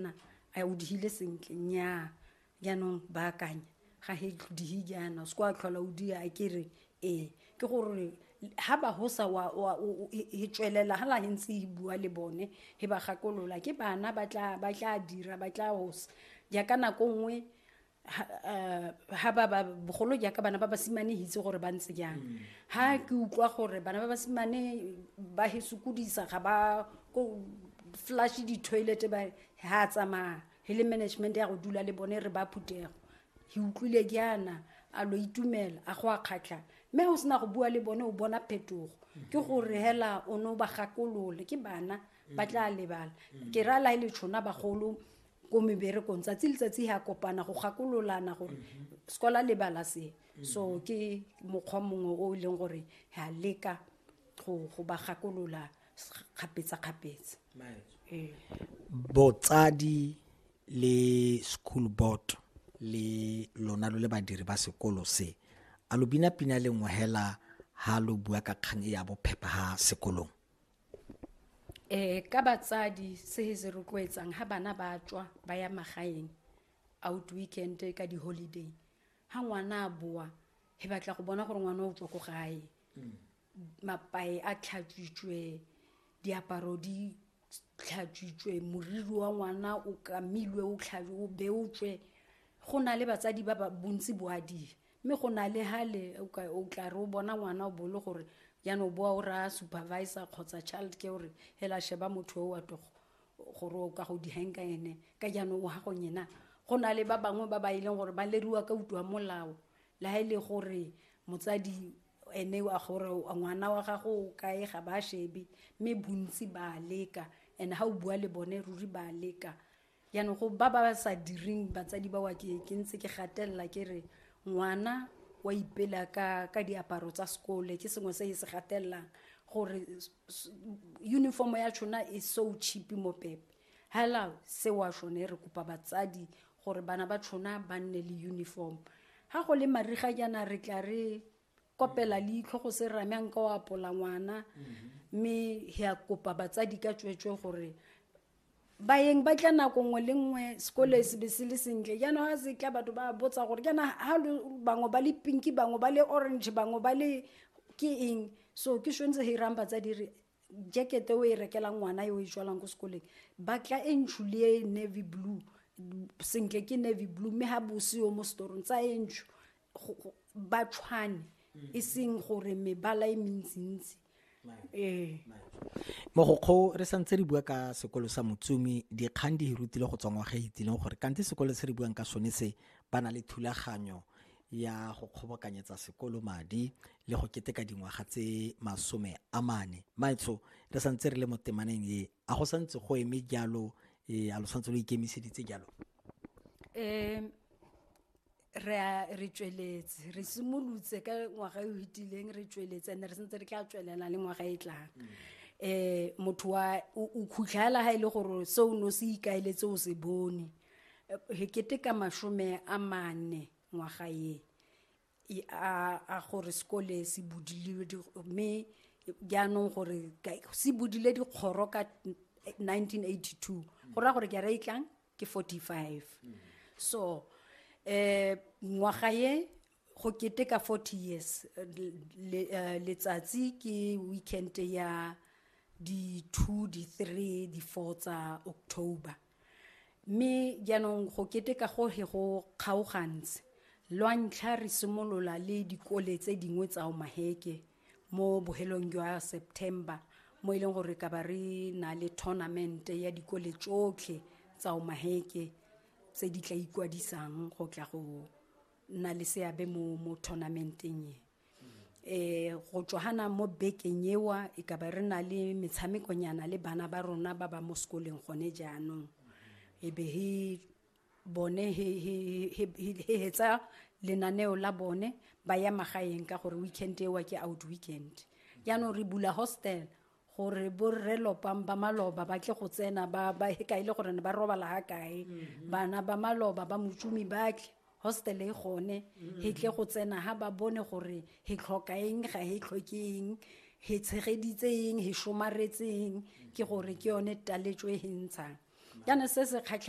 na a o dihile sentle nnyaa jaanong baakanya ga he dihi jaana se kwa tlhola o dia a kere ee ke gore ha ba ho sa wa wa- o- o- e e tswelela ha la he ntse e bua le bone he ba gakolola ke bana ba tla ba tla dira ba tla hosa jaaka nako nngwe ha ba ba bogolo jaaka bana ba basimane hitse gore ba ntse jang ha ke utlwa gore bana ba basimane ba he sokodisa ga ba ko flash di-toilet ba ha tsamaya he le management ya go dula le bone re ba phutego he utlwile jaana a lo itumela a go a kgatlha mme o sena go bua le bone o bona phetogo ke gore hela o ne o ba gakolole ke bana ba tla lebala ke ra la e le tshona bagolo ko meberekong tsatsi letsatsi ya kopana go gakololana gore mhm. sekola lebala se mhm. so ke mokgwa mongwe o e leng gore ya leka go ba gakolola kgapetsa-kgapetsa ee. botsadi le school board le lona lo le badiri ba sekolo se a lo bina pina le ngwehela ha lo bua ka kgang e ya bophepha ha sekolong um ka batsadi se se rotloetsang ga bana ba tswa ba ya magaeng out weekend ka di-holiday ga ngwana a boa e batla go bona gore ngwana o tswa ko gae mm. mapae a tlhatswitswe diaparo di tlhatswitswe moriri wa ngwana o kamilwe o tlhabe o beotswe go na le batsadi ba ba bontsi boadi mme go na le hale o tla re o bona ngwana o bole gore jaanong o boa o raya supervisor kgotsa child ke gore hela sheba motho o wa togo gore o ka go dihang ka ene ka jaanong o gagong ena go na le ba bangwe ba ba e leng gore ba leriwa ka utlwa molao le ga e le gore motsadi ene wa gore ngwana wa gago o kae ga ba shebe mme bontsi ba leka and ga o bua le bone ruri ba leka jaanong go ba ba sa direng batsadi ba wa ke ke ntse ke gatelela ke re ngwana wa ipela ka ka diaparo tsa sekole ke sengwe se e se gatelelang gore uniform ya tshona e so cheap mo pepe hela se wa shone re kopa batsadi gore bana ba tshona ba nne le uniform ga go le mariga jaana re tla re kopela leitlho go se rame nka o apola ngwana mme ya kopa batsadi ka tsweetswe gore bayeng ba tla nako nngwe le nngwe sekolo e sebe se le sentle jaanong ga se tla batho ba botsa gore jaana ga bangwe ba le pinki bangwe ba le orange bangwe ba le ke eng so ke swentse ga irang batsadi re jacket o e rekelang ngwana yo o e tswalang ko sekoleng ba tla e ntsho le e navy blue sentle ke navy blue mme ga bose yo mo setorong tsa e ntsho ba tshwane mm. e seng gore mebala e mentsintsi ee mogokgo re santse re bua ka sekolo sa motsumi dikgang di hirutile go tswangwa ga itsileng gore kante sekolo se re buang ka sone se ba na le thulaganyo ya go kgobokanyetsa sekolo madi le go keteka dingwaga tse masome a mane maetsho re santse re le mo temaneng e a go santse go eme jalo e a lo santse lo ikemiseditse jalo um re a re tsweletse re simolotse ka ngwaga e o hitileng re tsweletse and re sentse re tla tswelela le ngwaga e tlang um motho wa o khutlhela ga e le gore se o ne o se ikaeletse o se bone eh, kete ka masome a mane ngwaga e a gore sekole se budile mme jaanong gore se budile dikgoro ka 1982 eh, go raya gore ke a re e tlang ke 45 so eh ngwaga ye go keteka 40 years le, uh, letsatsi ke weekend ya di 2 di 3 di 4 tsa october mme jaanong go keteka go he go kgaogantse lwa ntlha re simolola le dikole tse dingwe tsa omaheke mo bohelong jwa september mo e leng gore ka ba re na le tournament ya dikole tsotlhe tsa omaheke tse di tla ikwadisang go tla go nna le seabe mo mo tournamenteng e eh go tswana mo bekeng ewa e ka ba re na le metshamekonyana le bana ba rona ba ba mo sekoleng gone jaanong e be he bone he hetsa lenaneo la bone ba ya magaeng ka gore weekend ewa ke out weekend jaanong re bula hostel gore borre lopang ba maloba ba tle go tsena ba ba ka ile gore ne ba robala ha kae mhm. bana ba maloba ba motšomi ba tle hostel e gone mhm. he tle go tsena ha ba bone gore he tlhoka eng ga he tlhoke eng he tshegeditse eng he somaretseng ke gore ke yone taletso e he ntshang jaanong se se kgatlhang